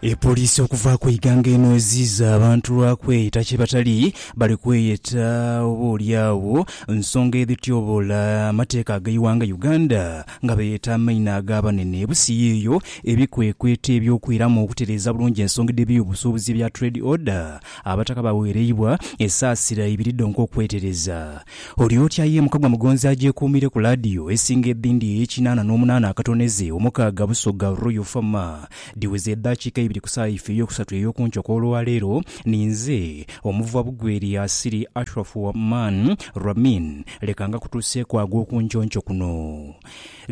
Epoliisi okuva ku ighanga eno eziiza abantu lwa kweyeta kye batali, bali kweyeta oba oli agho nsonga edhityoboola amateeka ag'eighanga Uganda nga beeyeta amaina ag'abanene ebusiya eyo ebikwekweto eby'okwiramu okutereeza bulungi ensonga dh'ebiyobusuubuzi ebya Trade Order Abataka baweereibwa esaasira ibiri dhonka okwetereza Olyotya ye Mukagwa Mugonzi agyekuumire ku laadiyo esinga edhindi ey'ekinaana n'omunaana akatoneze omukaaga Busoga Royal Farmer Dhiweze edhakiika ibiri ku saawa yaife ey'okusatu ey'oku nkyo kw'olwa leero, ni nze, Omuvuba Bugweri Asiri Ashraf Rahman Ramin, leka ngakutuuseeku ag'oku nky'onkyo kuno.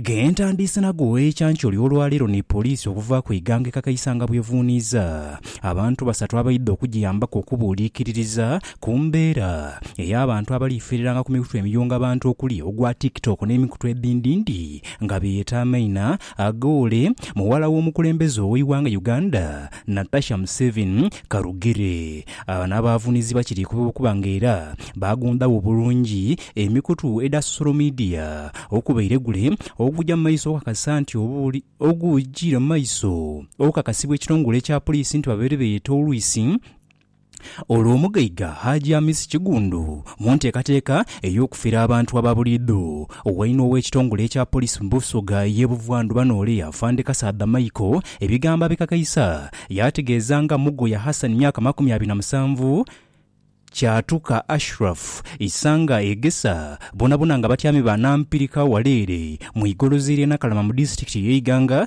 Ge ntandiise nago ekyankyo ly'olwa leero ni poliisi okuva ku ighanga e Kakaisa nga bw'evuuniiza abantu basatu abaidha okugiyambaku okubuuliikiririza ku mbeera ey'abantu abaliifiiriranga ku mikutu emiyunga bantu okuli ogwa TikTok n'emikutu edhindindi nga beeta amaina Agoole muwala w'omukulembeze ow'eighanga Uganda, Natasha Museveni Karugire. Abano abaavunizibwa kiri ku kuba nga era baagundhagho bulungi emikutu edha sosolo midiya okubaire gule oguja mu maiso okukakasa nti obuuli ogujiira mu maiso okukakasibwa ekitongole kya Poliisi nti babaire beeyeta olwisi Olwo omugaiga Haji Hamis Kigundu mu nteekateeka ey'okufera abantu aba buliidho, wainho ow'ekitongole ekya Police mu Busoga ey'e Buvandhuba n'ole Afande Kasaadha Michael ebigambo abikakaisa yaategeeza nga Mugoya Hassan myaka makumi abiri na musanvu, Kyatuka Ashraf, Isanga Egesa boonabona nga batyami ba Nampirika wala ere mu igolozi ly'e Nakalama mu disitulikiti ey'e Iganga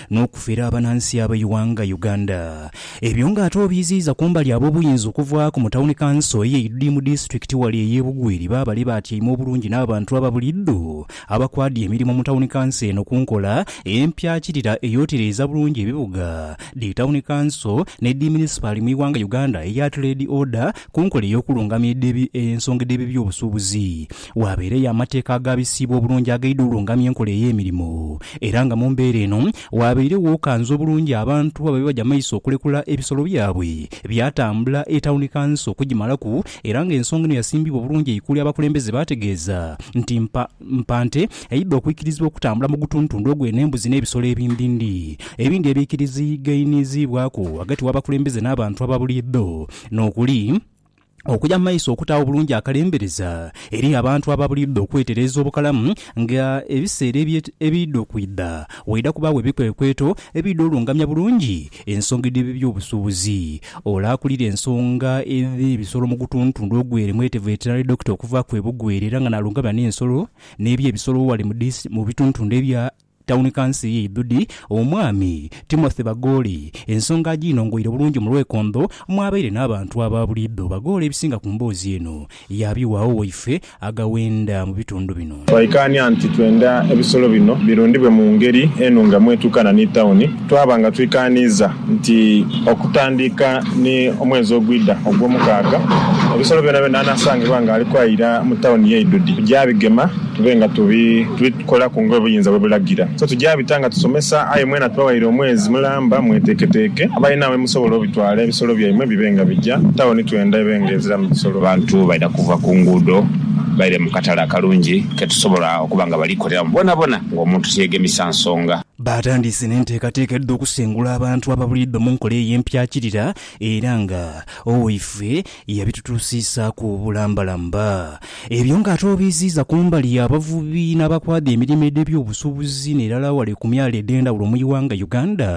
n'okufera abanansi ab'eighanga Uganda. Ebyo nga ate obiiziiza kumbali ab'obuyinza okuvaaku mu Tawuni Kanso eye Idudi mu disitulikiti wale eye Bugweri baabale baatyaime obulungi n'abantu aba bulidho abakwadhya emirimo mu Tawuni Kanso eno ku nkola empyakirira eyotereeza bulungi ebibuga, dhi Tawuni Kanso ne dhi Munisipaali mu ighanga Uganda eya Tireedi Oda ku nkola ey'okulungamya edha ensonga edh'ebyeby'obusuubuzi. Waabeereyo amateeka agaabisiibwa obulungi agaidha olungamya enkola ey'emirimo, era nga mu mbeera eno waabairegho okanza obulungi abantu ababe baja maiso okulekula ebisolo byabwe. Byatambula etauni kansa okugimalaku era nga ensonga eno yasimbibwa obulungi eikuli abakulembeze baategeeza nti mpa mpa nte eidha okwikirizibwa okutambula mu gutuntundu ogwo eno embuzi n'ebisolo ebindindi ebindi ebiikirizigainiziibwaku ghagati w'abakulembeze n'abantu aba buliidho n'okuli okuya mu maiso okutaagho obulungi akalembereza eri abantu abo abalidha okwetereeza obukalamu nga ebiseera ebidha okwidha waidha kubaagho ebikwekweto ebidha olungamya bulungi ensonga edh'ebyobusuubuzi. Ole akulira ensonga edh'ebisolo mu gutundhutundhu ogw'e Remwete Veterinary Doctor okuvaaku e Bugwere era nga n'alungamya n'ensolo n'eby'ebisolo ghale mu bitundhutundhu ebya Tawuni Kansi y'e Idhudi, Omwami Timothy Bagooli ensonga agiinongoire bulungi mu lwekondho mw'abaire n'abantu aba buliidho. Bagooli ebisinga ku mboozi eno yaabiwaagho waife aghawenda mu bitundu bino. Twaikaania nti twenda ebisolo bino birundibwe mu ngeri enungamu etuukana ni tawuni Twaba nga twikaaniiza nti okutandika ni omwezi ogwidha ogw'omukaaga, ebisolo byonabyona anaasangibwa nga ali kwayira mu tawuni ye Idudi, tuja bigema tube nga tubikolaku nga obuyinza bwe bulagira. So tuja bita nga tusomesa aye mwena tubawaire omwezi mulamba mweteeketeeke. Abalina we musobola obitwala ebisolo byaimwe bibe nga bija. Tawuni twenda ebe nga eziramu bisolo. Abantu baidha kuva ku nguudo baire mu katale akalungi ke tusobola okuba nga bali koleramu boonabona ng'omuntu tiyeegemisa nsonga. Baatandiise n'enteekateeka edh'okusengula abantu ababuliidho mu nkola eyo empyakirira era nga owaifwe yabitutuusiisaaku obulambalamba. Ebyo nga ate obiiziiza ku mbali y'abavubi n'abakwadha emirimo edh'ebyobusubuzi n'erala wale ku myalo edh'endhawulo mu ighanga Uganda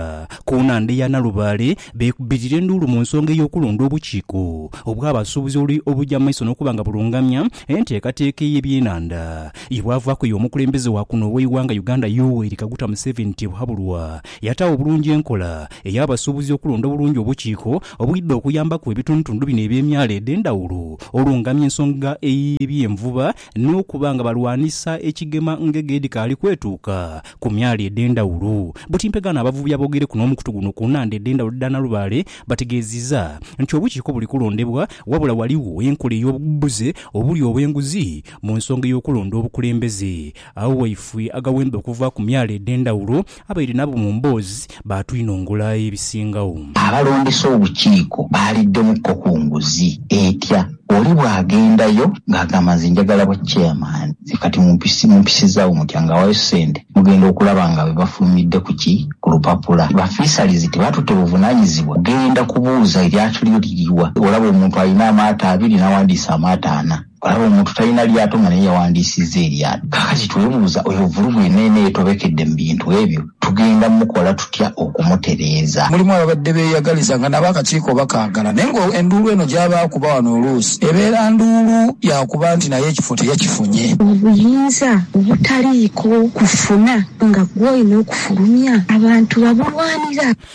ku nhandha ya Nalubaale beekubirira enduulu mu nsonga ey'okulonda obukiiko obw'abasuubuzi oluli obuja mu maiso n'okuba nga bulungamya enteekateeka ey'ebyenanda ye bwavaku ey'omukulembeze wa kuno ow'eighanga Uganda Yoweri Kaguta Museveni Tibuhaburwa yataawo obulungi enkola ey'abasuubuzi okulonda obulungi obukiiko obwidha okuyambaku ebitundutundu bino eby'emyalo edh'endhawulo olungamya ensonga ey'ebyenvuba n'okuba nga balwanisa ekigema ngege edhikaali kwetuuka ku myalo edhendhawulo. Buti mpegaano abavubi aboogereku n'omukutu guno ku nhandha edhendhawulo edha Nalubaale bategeezizza nti obukiiko buli kulondebwa wabula waligho enkola ey'obubuze obuli obw'enguzi mu nsonga ey'okulonda obukulembeze. Agho waifwe agawemba okuva ku myalo edhendhawulo abaire nabo mu mboozi baatwinongula ebisingagho. Abalondesa obukiiko baaliddemu ko ku nguzi etya oli bw'agendayo ng'agamba nze njagala bwa chairman, nze kati mumpisizzaawo mutya nga awaayo ssente mugenda okulaba nga be bafulumidde ku ki? Ku lupapula. Ba Fisheries tebatutte buvunaanyizibwa kugenda kubuuza eryato lyo liri wa? Olaba omuntu alina amaato abiri n'awandiisa amaato ana. Olaba omuntu talina lyato nga naye yawandiisizza eryato. Kaakati twebuuza, oyo vulugu yenna yenna eyetobekedde mu bintu ebyo, tugenda mukola tutya okumutereeza? Mulimu ababadde beeyagaliza nga nabo akakiiko bakaagala naye nga enduulu eno gy'aba akuba wano oluusi ebeera nduulu ya kuba nti naye ekifo teyakifunye. Obuyinza obutaliiko kufuna nga gw'olina okufulumya, abantu babulwanira.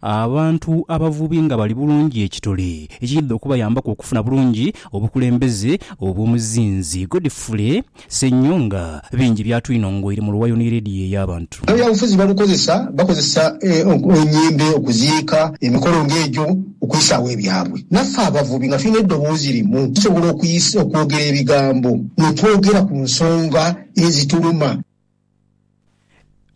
Abantu abavubi nga bali bulungi ekitole ekiidha okubayambaku okufuna bulungi obukulembeze obw'omuzinzi Godfrey Ssenyonga bingi byatwinongoire mu luwayo ni leediyo ey'abantu. Ebyabufuzi balukozesa bakozesa enyembe okuziika, emikolo nga egyo okwisaawo ebyabwe. Naffe abavubi nga tulina eddoboozi limu tusobola okwogera ebigambo mwe twogera ku nsonga ezituluma.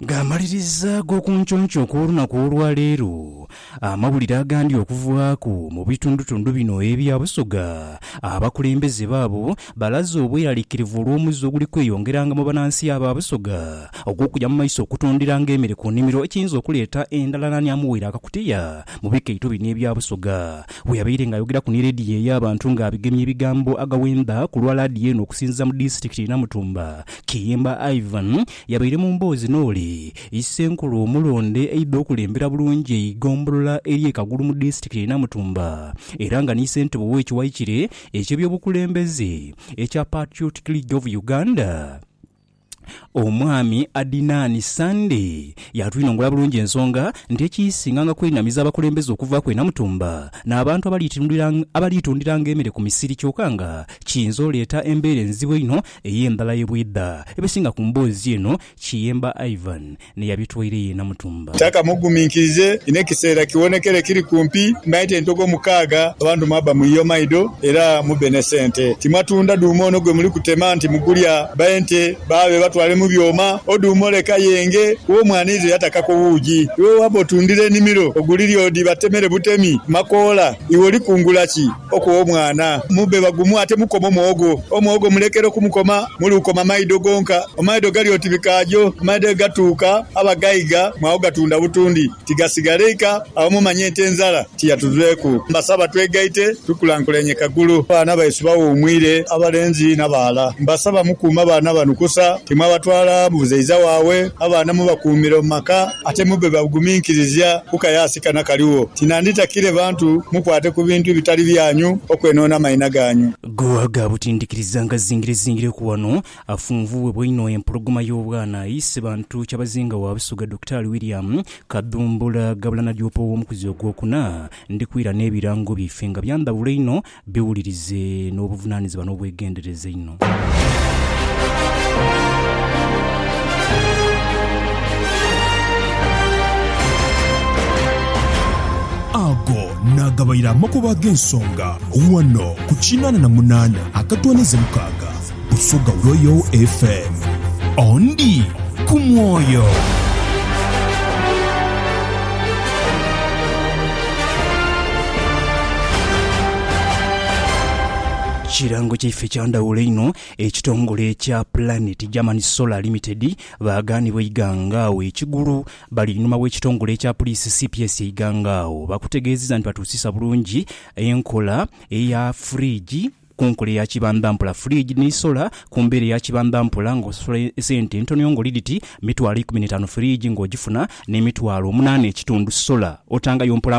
Ng'amaliriza ag'okunconco okw'olunaku olwa leero, amawulire agandi okuvaaku mu bitundutundu bino ebya Busoga, abakulembeze baabo balaze obweraliikirivu olw'omuzze oguli kweyongeranga mu banansi aba Busoga ogw'okuja mu maiso okutundiranga emere ku nimiro ekiyinza okuleeta endhalananyamuwere akakutiya mu bikaito bino ebya Busoga Bwe yabaire nga ayogeraku ni leediyo ey'abantu nga abigemye ebigambo agaghenda ku lwa laadiyo eno okusinziza mu disitulikiti ye Namutumba, Kiyemba Ivan yabaire mu mboozi n'oli Issenkulu omulonde eidha okulembera bulungi eigombolola ery'e Kagulu mu disitulikiti ye Namutumba era nga ni Ssentebe ow'ekiwayi kire eky'ebyobukulembeze ekya Patriotic League of Uganda. Omwami Adinani Sande yaatwinongora bulungi ensonga nti ekiisinga nga kwenamiza abakulembeze okuvaaku e Namutumba n'abantu abaliitundiranga emere ku misiri kyoka nga kiyinza oleeta embeera enzibu einho ey'endhala ye bwedha ebesinga ku mboozi eno. Kiyemba Ivan Ni yabitwaire ye namutumba. Tata muguminkirize, inho ekiseera kiwonekere kiri kumpi. Mmanhite entogo mukaaga, abantu mwabba muyiye omaido era mubbe ne sente. Timwatunda dhuuma ono gwe muli kutema nti mugulya ba ente baabe batwale mu byoma. O dhuuma ole kayenge wo mwanize yatakaku wuugi. Iwe bw'abba otundire enimiro ogulire odi batemere butemi makoola, iwe oli kungula ki? Okugha omwana mubbe bagumu ate mukome omuwogo. Omuwogo mulekere okumukoma mule ukoma maido gonka. Amaido gali oti bikaagyo, amaido aye gatuuka aba gaiga mwagho gatunda butundi. Tigasigala eika agho mumanye nti enzala tiyatuveeku. Mbasaba twegaite tukulankulenye Kagulu. Abaana baisu bawuumwire abalenzi n'abaghala. Mbasaba mukuume abaana bano kusa, timwabatwala mu buzeiza waabwe. Abaana mubakuumire mu maka. Ate mube baguminkirizia ku kayaasi kano akaligho, ti nandhitakire bantu mukwate ku bintu ebitali byanyu okwenoona amaina ganyu. Go aga butindhikiriza nga zingirezingireku ghano, afunvuughebwa inho empologoma y'obwana aye Ssebantu Kyabazinga wa Busoga Dokitaali William Kadhumbula ghabula na Joopa ow'omukuzi ogwokuna, Ndhikwira n'ebirango byaife nga bya ndhawulo inho Biwulirize n'obuvunaanyizibwa n'obwegendereza einho. Ago naagabaire amakubo ag'ensonga ghano ku kinaana na munaana akatoonheze mukaaga. Busoga Royal FM. Ondi ku mwoyo. Kirango kyaife kya ndhawulo inho. Ekitongole ekya Planet German Solar Limited baagaanibwa eighangaawo ekigulu. Bali einhuma w'ekitongole ekya puliisi cps eighangaawo. Bakutegeezezza nti batuusisa bulungi enkola eya fridge. Ku nkola eya kibandhampula, fridge ni solar. Ku mbeera eya kibandhampula, nga osasula esente entono ng'oli dhiti mitwalo ikumi n'etaanu fridge ng'ogifuna, n'emitwalo omunaana ekitundu solar otangayo mpola.